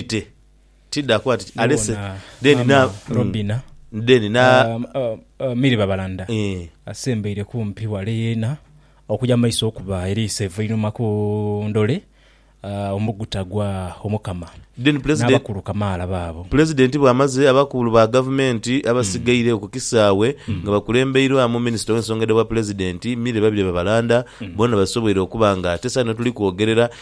Ate tidha kuba nti alese Nubona then na maama Robina then na um, uh, uh, Milly Babalanda eh, asembeire kumpi wale yeena okuja mu maiso okuba eriiso eivainhuma ku ndole uh, omuguta gwa Omukama then president n'abakulu kamaala baabo. Pulezidenti bw'amaze, abakulu ba gavumenti abasigaire oku kisaawe nga bakulembeirwamu minisita ow'ensonga edha bwapulezidenti, Milly Babirye Babalanda boona basoboire okuba nga tesaano tuli kwogerera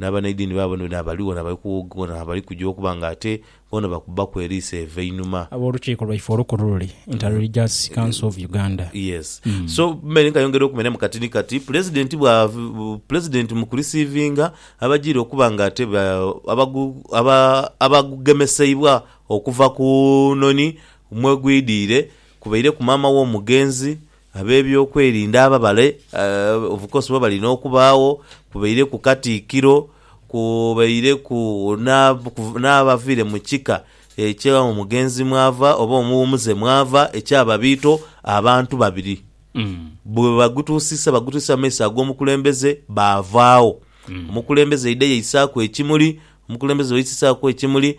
N'abanaidiini baabo ni bano abali ghano abali kuwogana, abali kuja okuba nga ate boona bakubbaku eriiso evo einhuma. Ab'Olukiiko lwaife olukulu luli Inter-Religious Council of Uganda. Yes. So mmere nkayongera okumenya mu kati ni kati, Pulezidenti bwa, Pulezidenti mu kulisiivinga abajiire okuba nga ate ba, abagu, aba, abagugemeseibwa okuva ku noni mwegwidhiire, kubaireku maama w'omugenzi, Ab'ebyokwerinda ababale obukosi bwebalina okubaagho, kubaireku Katikkiro, kubaireku n'abaviire mu kika ekya omugenzi mwava oba omuwumuze mwava ekya Babiito, abantu babiri bwebagutuusisa bagutuusisa mu maiso ag'omukulembeze baavaagho. Omukulembeze aidha yaisaaku ekimuli, omukulembeze bweyaisisaaku ekimuli,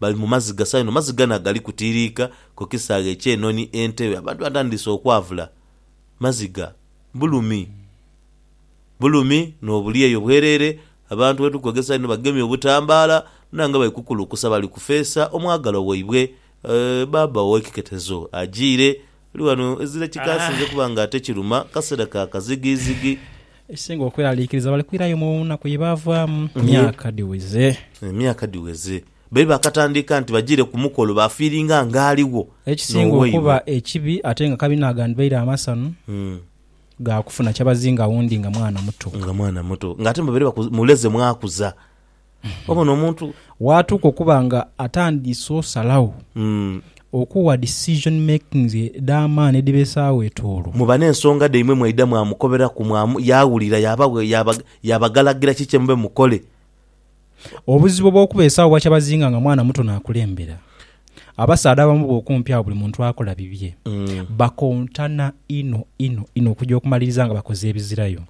Bali mu maziga sa inho. Maziga na gali kutiiriika ku kisaghe eky'enhonhi entebe. Abantu batandiise okwavula. Maziga. Bulumi. Bulumi n'obulyeyo bwereere. Abantu bwe tuli kwegesa inho bagemye obutambaala bona nga bali kukulukusa bali kufeesa omwagalwa waibwe. Eeh, Bbaabba ow'ekiketezo ajiire. Eri ghano ezira kikaasinze kuba nga ate kiruma kaseera ka kazigizigi. Ekisinga okweraliikiriza bali kwirayo mu nnaku ye baavaamu myaka dhiweze. Emyaka dhiweze babe baakatandiika nti bajiire ku mukolo baafiiringa ng'aligho Ekisinga okuba n'owaibwe. ekibi ate nga kabina agandhibaire amasanu ga kufuna kyabazinga wundi nga mwana muto. Nga mwana muto. Ng'ate mbabaire baku, muleze mwakuza. Obona omuntu. Waatuuka okuba nga atandiise osalagho, okuwa decision makings edh'amaani edhibeesaagho etoolo. Muba n'ensonga dhaimwe mwaidha mwamukoberaku, mwamu, yaawulira, yaabagho, yaaba, yaabagalagira ki kye mube mukole. Obuzibu obw'okubeesaagho bwakyabazinga nga mwana muto naakulembera. Abasaadha abamu bwokumpi agho buli muntu akola bibye. Bakontana inho inho inho okuja okumaliriza nga bakoze ebizirayo.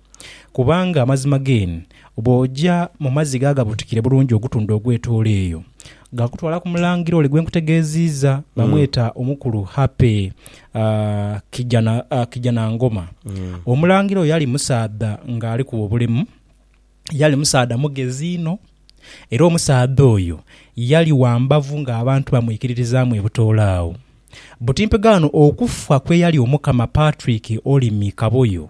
Kubanga amazima geen bwoja mu mazzi gaa gabutikire bulungi ogutundhu ogwetoola eyo, gakutwala ku mulangira ole gwenkutegeeziiza bamweta omukulu Happy Kijana Kijanangoma. Omulangira oyo yali musaadha nga alikuba obulemu. yali musaadha mugezi inho, era omusaadha oyo yali wa mbavu ng'abantu bamwikiririzaamu ebutoola agho. Buti mpegaano okufa kw'eyali Omukama Patrick Olimi Kaboyo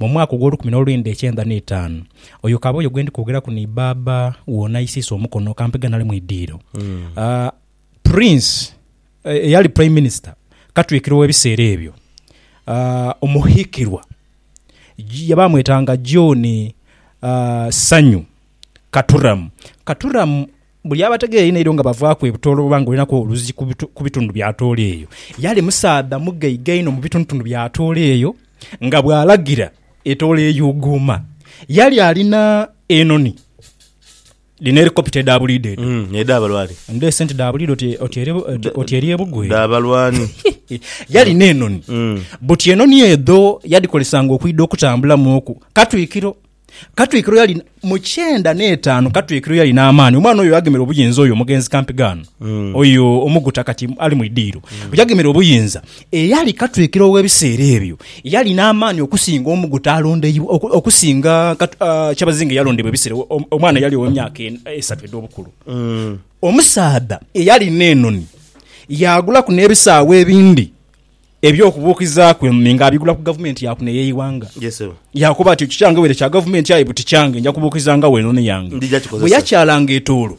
mu mwaka ogw'olukumi n'olwenda ekyenda n'etaanu. Oyo Kaboyo gwe ndi kwogeraku ni baaba wo n'aisiisa omukono kampeghe nali mu idiiro. Ah, Prince eh, eyali Prime Minister Katwikiro w'ebiseera ebyo, ah, Omuhikirwa. Baamwetanga John Sanyu Katuramu. Katuramu buli abategeera einho eidho nga bavaaku e Butoolo oba nga olinaku oluzi ku bitundu bya Atooro eyo, yali musaadha mugaiga inho mu bitundutundu bya Atooro eyo nga bw'alagira etoola eyuuguuma. Yali alina enhonhi. Dhino helicopter edha buliidho edho. Mm, edha balwani. Ndho esente dha buliidho oti- oti eri- oti- oti eri ebugwe. Dha balwani. Yalina enoni. Mm. Buti enoni edho yadhikolesanga okwidha okutambulamu oku. Katwikiro. Katwikiro yalina, mu kyenda n'etaanu Katwikiro yalina amaani. Omwana oyo yagemera obuyinza oyo omugenzi Kampigaano. Oyo omuguta kati ali mu idiiro. Yagemera obuyinza. Eyali katwikiro ow'ebiseera ebyo yali n'amaani okusinga omu guta alondeibwa, okusinga kyabazinga eyalondebwa ebiseera ebyo, omwana eyali ow'emyaka esatu edh'obukulu. Omusaadha eyali n'enoni yaagulaku n'ebisaawe ebindi eby'okubuukizaaku enoni ng'abigula ku gavumenti ya kuno ey'eighanga. Yaakoba ati, Ekyo kyange were kya gavumenti aye buti kyange, nja kubuukizangagho enoni yange. Bwe yakyalanga etoolo.